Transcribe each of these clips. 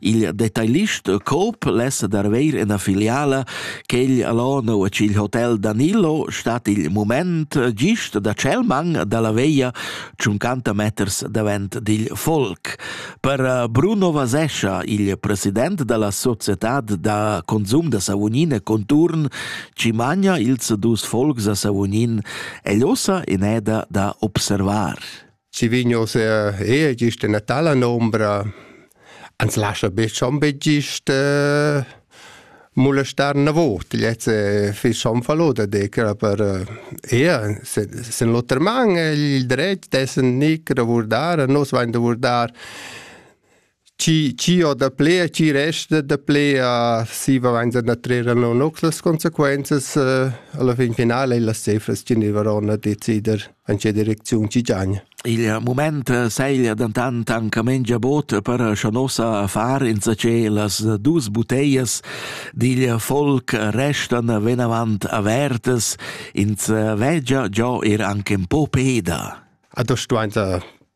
Il detailist Coop lessa dar veir ena filiala che il Lono e il hotel Danilo stat il moment gist da Celmang dalla veia 50 meters davent dil folk. Per eh, Bruno Vasescha, il president dalla societad da consum da Savonine Conturn, ci magna ils dus folks a Savognin e l'ossa in eda da observar. Si vigno se e gist in tala nombra ans lascia be schon be gist molestar na vot jetzt fi schon fallo da decra per ea se sen l'oter man il dret dessen nicr vurdar nos vain da vurdar chi chi ho da ple e chi resta da ple a siva vainza da trer no noc las consequenzas uh, alla fin finale las cefras chi ne varon a decider in che direcziun ci giagna. Il moment seglia dentant anche mengia bot per schanossa far in ce las dus buteias dil folk restan venavant avertas ins vegia già er anche un po peda. A das stuainza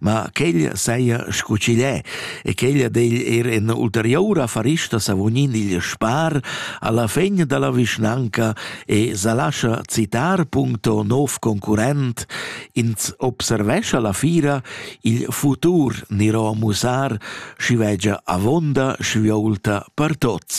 ma quegl saja scu ch'igl è e quegl degl er en ulterioura farista savognin igl spar alla fegn dalla vischnanca e sa lascha citar puncto nov concurrent ins observescha la fira il futur niro a musar schi vegia avonda schiviolta per tots.